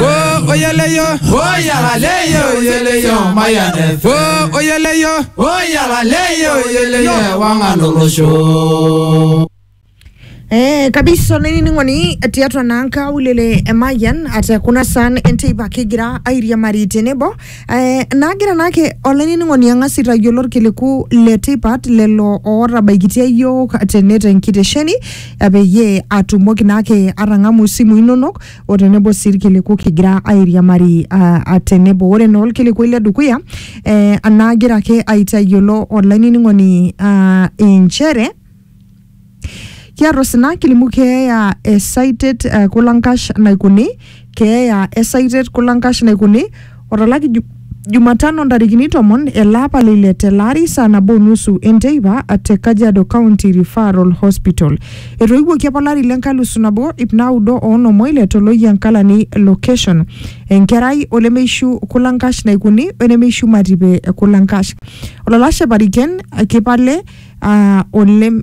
o oyeleyo o yalaleyo oyeleyo mayanefe o oyeleyo o yalaleyo oyeleyo ewang'an olosho Eh, kabisa olainining'oni tiatua naa nkaulele e Mayian ate kuna saan enteipa kigira airiamari tenebo eh, naagira naake olainining'oni ang'as aitayiolo irkiliku le tipat lelo ootabaikitia iyiook tene tenkitesheni eh, peyie atumoki naake atang'amu isimui inonok o tenebo sii irkiliku kigira airiamari ah, ah, tenebo ore naa olkilikuai le dukuya eh, anaagira ake aitayiolo olainining'oni ah, inchere kiata osina kilimu keeya esaitet eh, kulankash naikuni keeya esaitet kulankash naikuni Otolaki ju, Jumatano ntarikini tomon ele apa le ile tele ari saa nabo nusu enteipa te Kajiado County Referral Hospital. Etoiwuoki apa olari le nkalusu nabo ip naudo oonom oile to Loyiankalani location. Enkerai olemeishu kulankash naikuni wenemeishu matipe kulankash. Olalashe pariken kipale uh, olem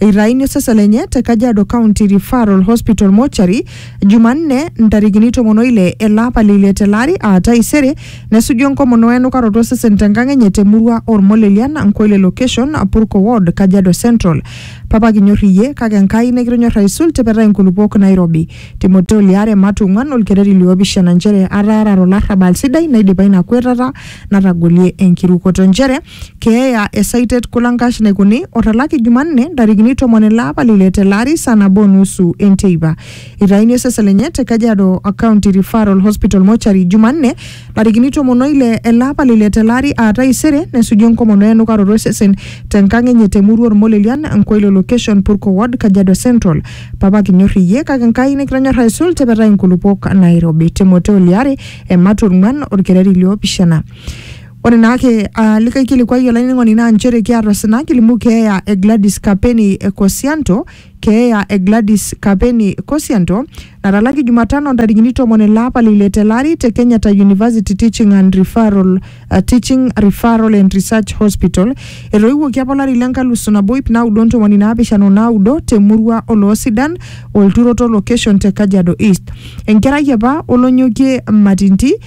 eitaini osesen lenye te Kajiado County Referral Hospital Mortuary Jumanne ntarikini tomon oile ele apa le ile tele ari aa taisere nesuju enkomono we enukaroto osesen tenkang enye temurua Ormolelian Nkoile Location Purko Ward Kajiado Central. Papa kinyor iyie kake Enkai nikitonyor aisul tipetai nkulupuok Nairobi. Timoteo liare Matu ong'uan olkereri liopishana nchere ataarare olarrabal sidai naidipa ina kuetata natagolie enkirukoto nchere keeya e Saitet Kulankash Naikoni otalaki Jumanne ntarikini tomon ele apa le ile tele ari saa nabo o nusu enteipa. Eitayuni osesen lenye te Kajiado County Referral Hospital Mortuary Jumanne ntarikini tomon o ile ele apa le ile tele ari aa taisere nesuju enkomono enukaroto osesen te nkang enye te murua Olmolelian, Nkoilo Location, Purko Ward, Kajiado Central. Papa kinyor iyie kake Nkai nikitonyor aisul tepetai inkulupuok nairobi. Timoteo liare, ematua ong'uan, olkereri liopishana. Ore naake aa likae kilikuai olainining'oni naa nchere kiata osina kilimu keeya e Gladys Kapeni Kosianto, keeya e Gladys Kapeni Kosianto natalaki Jumatano ntarikini tomon ele apa le ile tele ari te Kenyatta University Teaching and Referral, uh, Teaching Referral and Research Hospital. Etoiwuoki apa olari le nkalusu nabo ip naudo o ntomoni naapishana o naudo te murua Oloosidan, Olturoto location te Kajiado East. Enkerai apa olonyokie Matinti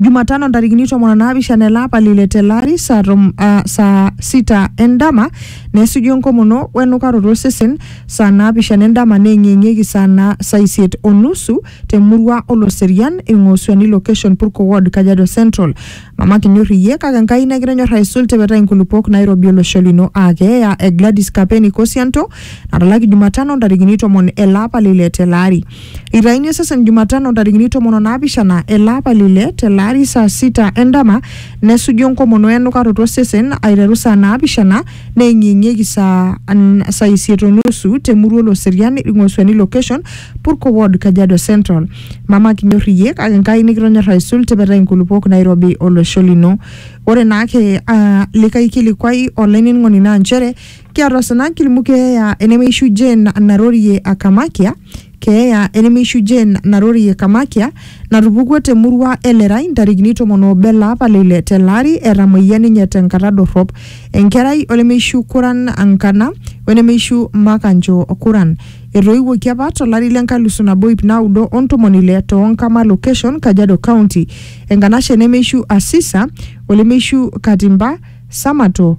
Jumatano ntarikini tomon onaapishana ele apa lile tele ari saa tom, ah, saa sita endama nesuju enkomono wenukaroto osesen saa naapishana endama neeng'ieng'ieki saa na saa isiet onusu temurua Oloserian Ing'osuani location Purko ward Kajiado Central. Mama kinyor iyie kake Enkai negira enyor aisul tipetai nkulupuok nairobi olosho lino aa keeya e Gladys Kapeni Kosianto natalaki Jumatano ntarikini tomon ele apa lile tele ari. Eitaini osesen Jumatano ntarikini tomon o naapishana ele apa le ile tele ari saa sita endama nesuju enkomono e enukaroto osesen aiteru saa naapishana neeng'ieng'ieki saa n- saa isiet o nusu te murua Oloserian Ing'osuani location Purko ward Kajiado Central. Mama kinyor iyie kake Nkai nikitonyor aisul tipetai nkulupuok nairobi olosho lino. Ore naake aa likae kilikuai olainining'oni naa nchere kiarrosana kilimu keeya enemeishu Jane narorie Akamakia, keeya enemeishu Jane narorie Kamakia natupukuo te murua e Lerai ntarikini tomon oobo ele apa le ile tele ari etamoyia ninye tenkata dorrop. Enkerai olemeishu Kuran Nkana wenemeishu Makanjo Kuran. Etoiwuoki apa tolari le nkalusu nabo iip naudo o ntomoni ile too Nkama location, Kajiado County. Enkanashe nemeishu Asisa olemeishu Katimba Samato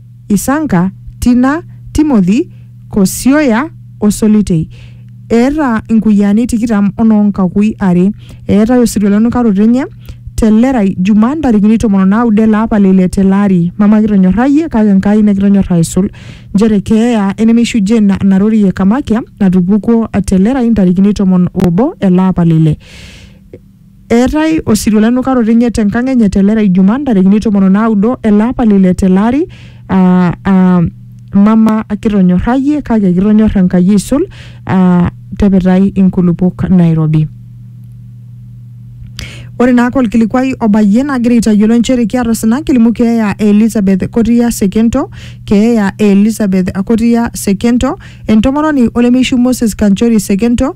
Isanka, Tina, Timothy, Kosioya o Solitei. Eeta inkuyiaani tikitam o noo nkakui are. Eetae osirua le nukaroto enye te Lerai Juma ntarikini tomon o naudo ele apa le ile tele ari. Mama kitonyorrayie kake Enkai nikitonyorra aisul. Nchere keeya enemeishujie ina narori e Kamakia natupukuo te Lerai ntarikini tomon o obo ele apa le ile. Eetae osirua lenukaroto enye te nkang enye te Lera Ijumaa ntarikini tomon o naudo ele apa le ile tele ari aa aa mama kitonyorrayie kake kitonyorr Enkai aisul aa tepetai inkulupok nairobi. Ore naake olkilikuai obayie nagira aitayiolo nchere kiata osina kilimu keeya e Elizabeth Kotia Sekento, keeya e Elizabeth Kotia Sekento, entomononi olemeishiu Moses Kanchori Sekento,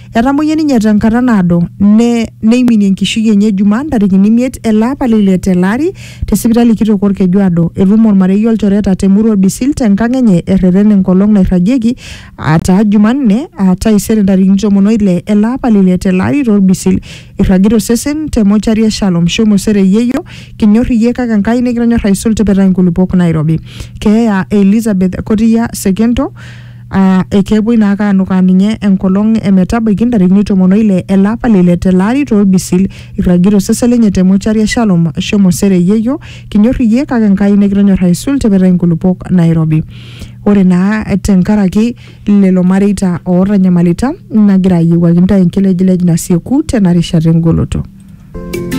Etamoyia ninye tenkata naado ne neiminie enkishui enye Jumaa ntarikini imiet ele apa le ile tele ari te sipitali kitok Olkejuado. Etum olmarei olchoreta te murua Bisil te nkang enye erreten enkolong nairragieki aa taa Jumanne aa taisere ntarikini tomon o ile ele apa le ile tele ari to Lbisil. Eirragita osesen te mochari e Shalom. Shomo sere yieyo. Kinyor iyie kake Enkai nikitonyor aisul tipitai nkulupuok nairobi. Keeya e Elizabeth Kotiya Sekento. aa ekepuoi naa ake aanukaa ninye enkolong e metabaiki ntarikini tomon oile ele apa le ile tele ari torbisil irragita osesen lenye te mochari e Shalom shomo sere yeyio kinyor iyie kake Enkai nikitonyor aisul tipita inkulupuok nairobi ore naa tenkaraki lelo mareita ootanyamalita nagira ayiewuaki ntae enkilejilej nasieku tena rishata engoloto